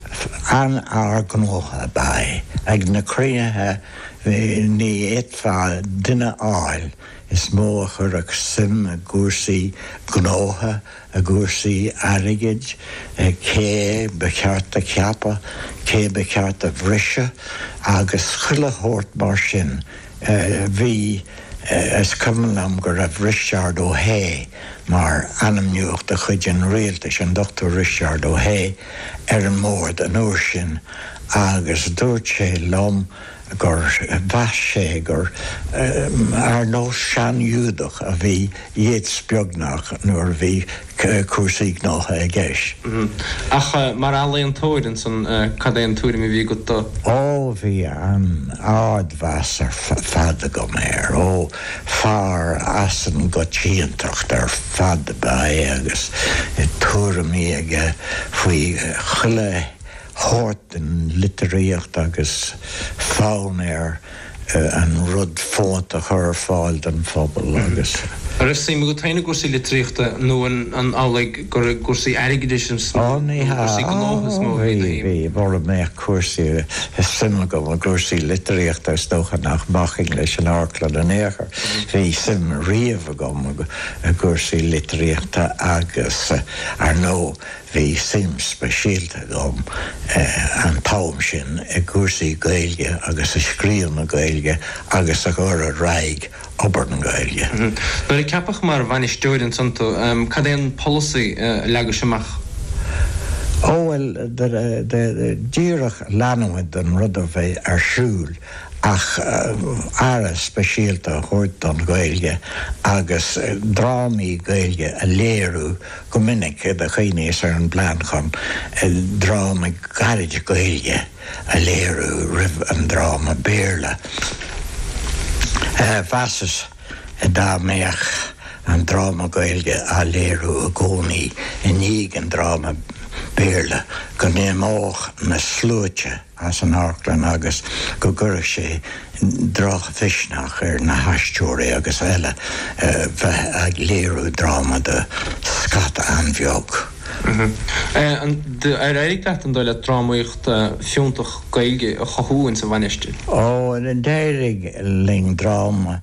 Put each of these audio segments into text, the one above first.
An-fhear gnótha ab ea é ag na cruinnithe ní fhéadfá duine a fháil is mó a chuirfeadh suim i gcúrsaí gnótha, i gcúrsaí airgid, cé ba cheart a cheapadh, cé ba cheart a bhriseadh agus chuile shórt mar sin. Bhí, is cuimhin liom go raibh Risteárd Ó hAodha mar ainmnitheach de chuid an rialtais, an Dr. Risteárd Ó hAodha, ar an mbord an uair sin agus dúirt sé liom gur mheas sé gur ar nós sean-Ghiúdach a bhí Yeats beagnach nuair a bhí cúrsaí gnótha i gceist. Ach mar ealaíontóir, ansan, cad é an tuairim a bhí agat dó. Ó, bhí an-ardmheas ar fad agam air. Ó, fear as an gcoitiantacht ar fad ab ea é agus tuairimí aige faoi chuile shórt den litríocht agus fonn air an rud fónta a chur ar fáil don phobal agus. An raibh suim agat féin i gcúrsaí litríochta nó an amhlaidh gur i gcúrsaí airgidis is mó nó i gcúrsaí gnótha is mó a bhí do shuim? Bhí, mura mbeadh cúrsaí, suim agam i gcúrsaí litríochta is dócha nach mbacfainn leis an amharclann in aon chor. Bhí suim riamh agam i gcúrsaí litríochta agus, ar ndóigh, Bhí suim speisialta agam an t-am sin i gcúrsaí Gaeilge agus i scríobh na Gaeilge agus i gcur ar aghaidh obair na Gaeilge. Nuair a ceapadh mar bhainisteoir ansan tú, cad é an polasaí a leagais amach? Ó bhuel, díreach leanúint den rud a bhí ar siúl ach aire speisialta a thabhairt don Ghaeilge agus drámaí Gaeilge a léiriú, go minic do chuimhníos ar an bplean chun dráma gairid Gaeilge a léiriú roimh an dráma Béarla. Mheasas dá mbeadh an dráma Gaeilge á léiriú i gcónaí i ndiaidh an dráma Béarla go n-imeodh na sluaite, as an amharclann agus go gcuirfeadh sé drochmhisneach ar na haisteoirí agus eile bheith ag léiriú dráma do scata an-bheag. Ar éirigh leat, an dóigh leat, drámaíocht fiúntach Gaeilge a chothú ins an Mhainistir? Ó, d'éirigh linn dráma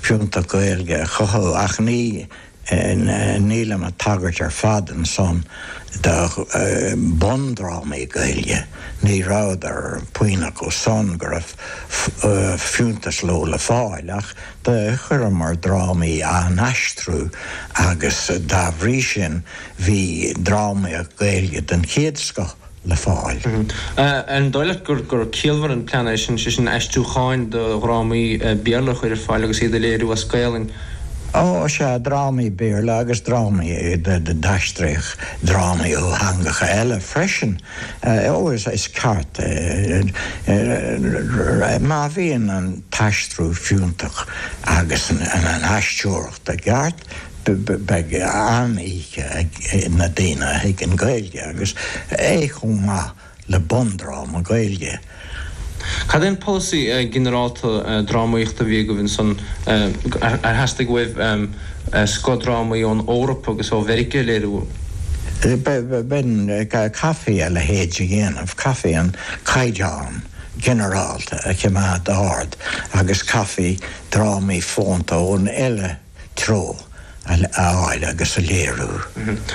fiúntach Gaeilge a chothú ach ní Nílim ag tagairt ar fad ansan do bhundrámaí Gaeilge, ní rabhadar puinn acu san go raibh fiúntas leo le fáil, ach do chuireamar drámaí á n-aistriú agus dá bhrí sin bhí drámaíocht Ghaeilge den chéad scoth. le fáil. Ar ndóigh leat gur ciallmhar an plean é san, sé sin aistriúcháin do dhrámaí Béarla a chur ar fáil agus iad a léiriú as Gaelainn? Ó, sea, drámaí Béarla agus drámaí a d'aistreodh drámaí ó theangacha eile freisin. Ó, is ceart é. Má bhíonn an t-aistriú fiúntach agus an aisteoireacht, Ba cheart go mbeadh an-oíche ag na daoine a thuigeann Gaeilge, agus é chomh maith le bundráma Gaeilge. Cad é an polasaí ginearálta drámaíochta a bhí agaibh ansan? Ar theastaigh uaibh scothdrámaí ón Eoraip agus ó Mheiriceá a léiriú? Bhuel, chaithfí a leithéid a dhéanamh, chaithfí an caighdeán ginearálta a choimeád ard agus chaithfí drámaí fónta ón uile threo a fháil agus a léiriú.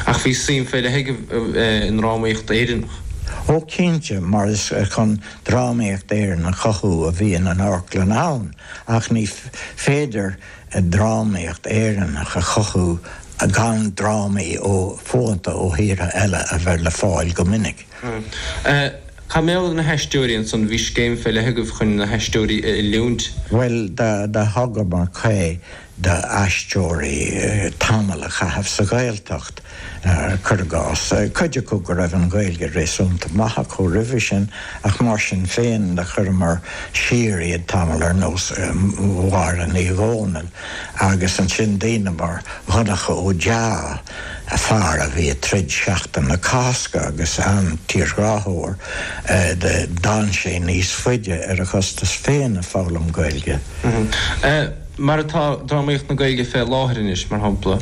Ach bhí suim fé leith agat i ndrámaíocht Éireannach. Ó cinnte, mar is chun drámaíocht Éireann a chothú a bhíonn an amharclann ann, ach ní féidir drámaíocht Éireannach a chothú gan drámaí fónta ó thíortha eile a bheith le fáil go minic. Hm. Cad mar gheall ar na haisteoirí ansan? Bhí scéim fé leith agaibh chun na haisteoirí a oiliúint. Bhuel, do thugamar caoi do aisteoirí tamall a chaitheamh sa Ghaeltacht, cuir i gcás. Cuid acu go raibh an Ghaeilge réasúnta maith acu roimhe sin, ach mar sin féin do chuireamar siar iad tamall ar nós Mháire Ní Dhomhnaill, agus ansin daoine mar Dhonncha Ó Dea, a fear a bhí ag troid Seachtain na Cásca agus an-tírghráthóir a d'fhan sé níos faide ar a chostas féin ag foghlaim Gaeilge. Mar atá drámaíocht na Gaeilge fé láthair anois, mar shampla,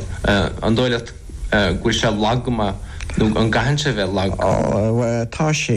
an dóigh leat go bhfuil sé lag go maith nó an gcaitheann sé bheith lag? Tá sé.